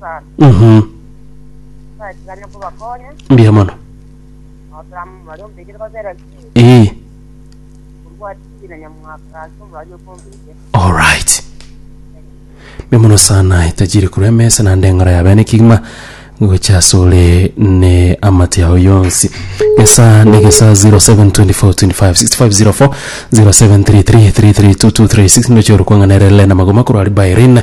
sana Mhm. natigane kobakonya Mbuya mono. notama omwari ombekire babera chii Eeh. orwatiri na nyamwaka ase omwari okombekire Alright. Mbuya mono sana etajiri korwa emesa naende eng'ora ya bene kigima gocha ase ore ne amate yao yonsi. Esaa ne gesaa 0724256504 0733332236 ndoche ore kwang'ana erere lena magoma korwa Ribae Rina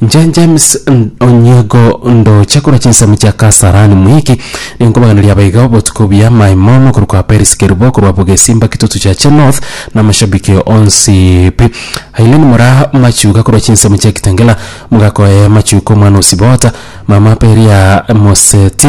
Inche James Onyango ndoche korwa chinsemo chia Kasarani Mwiki, ninkobaganeria abaiga botuko buya my mono korwa kwa Peris Kerubo korwa Bugesimba Kitutu Chache North na amashabiki onsi pi. Aileen Mora Machuga korwa chinsemo chia Kitengela, Mogakoye Machuka omwana o Sibota, mama Peria Moseti,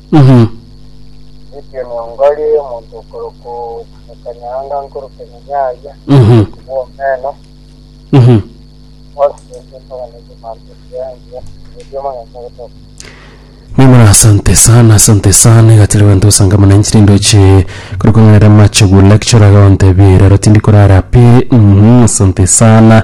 Githii onyongori omonto okorokwa Omokanyaanga nkoro Kenene aria omonto bw'omeno, ase enchera ntaganetie manchuri engiya, erio omonyene ogotoka. Mimura asante sana asante sana igatire gento osanga mana inchiri ndoche kuri kong'erera mache gu lecture ga ontebie rero tindi korara pi mhm asante sana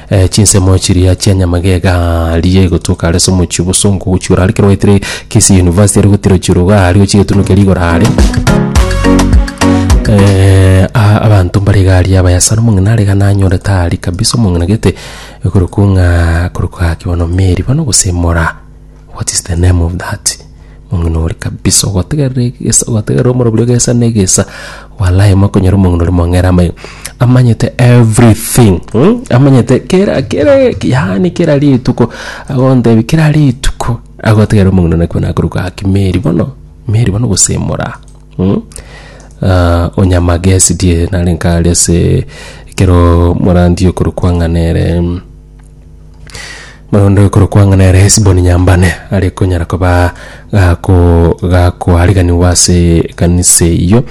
Chinsemo chiria chia nyamagega riria igotuoka are ase omochie obosongo ogochiora are ekero gwaetire Kisii University are gotira ochiora iga aria ochi egetunukia rigoro are abanto mbare iga aria abayasani omong'ina are iga nanyore tari kabisa omong'ina gete ekorokwa ng'a korokwa gaki bono Mary bono gose Mora. What is the name of that? Omong'ina ore kabisa ogotegerera egesa ogotegerera omorobio egesa na egesa walai mokonyora omong'ina ore mong'era amaiga amanyete everything hmm? amanyete kera kera yaani kera rituko agontebia kera rituko agotegerera omong'ina nakwo nakoruka gaki meri bono meri bono gosemora hmm? Ah, onyamagesi die nare nkare ase ekero morandi okorokwa ng'a nere mm, Moyondo ekorokwa ng'a nere Hesiboni Nyambane are konyara koba gako gakoariganigwa ase ekanisa eyio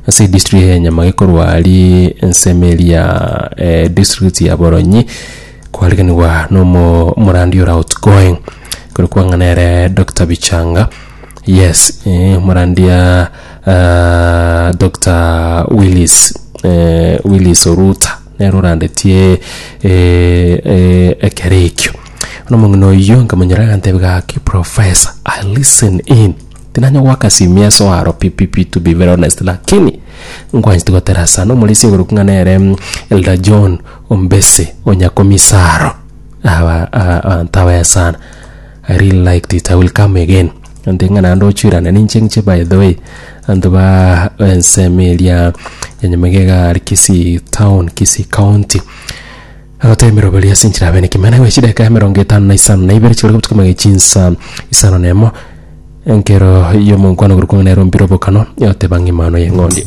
ase edistrict ya Enyama gekorwa aria ensemo eria ya eh, district ya Boronyi koariganigwa nomo omorandi ore outgoing ekorokwa ng'a nere Doctor Bichanga yes eh, omorandia ah, Doctor Willis eh, Willis Oruta nere orandetie ekero ekio. Bono omong'ina oyio nkamonyora agantebia gaki professor I listen in tinanya goaka simieso aro pi pi pi to be very honest lakini nkwanchete gotera sana omorisia oborokigwa ng'a nere Elder John Ombese o Nyakomisa aro abanto abaya sana. I really liked it. I will come again. Nde ng'a naende ochuerane ninche ng'che by the way. Anto ba ensemo eria ya Nyamagega are Kisii town, Kisii county. Agotebera oboria ase enchera abe nekimena gwe chideka ya emerongo etano na isano na ibere chikore gotuka mage chinsa isano na emo. Enkero y'omonkwano gorokwa ng'a nero mbire obokano yoteba ng'a emano y'eng'ondi.